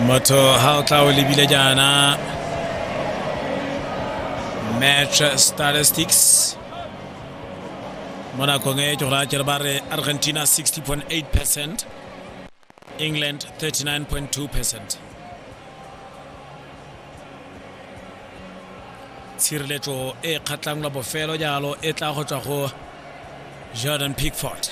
motho ha o tla o lebile jaana match statistics mo nakong e ke go raya kere ba re argentina 60.8 percent England 39.2%. tshireletso e kgatlhang la bofelo jalo e tla go tswa go jordan pickford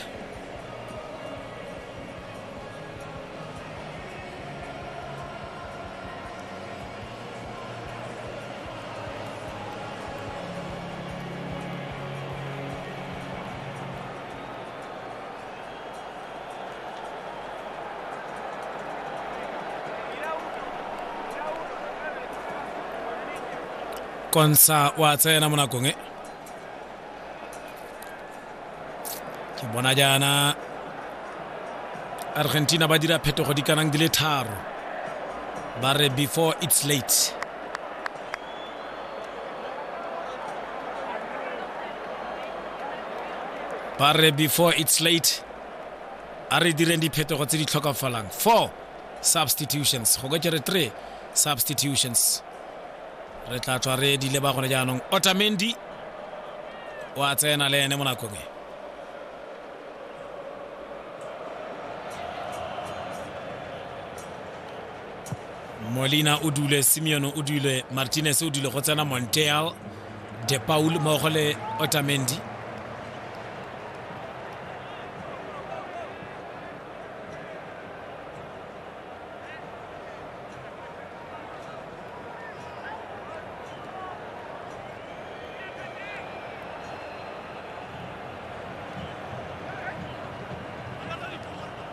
konsa wa tsena mo nakong e ke bona jaana argentina ba dira phetogo di kanang di le tharo ba re before its late ba re before it's late a re direng diphetogo tse di tlhokafalang four substitutions go ka kere three substitutions re tla tswa re di leba gone jaanong otamendi o a tsena le ene mo nakong e molina o dule simeon o dule martinez o dule go tsena monteal de paul mmogo le otamendi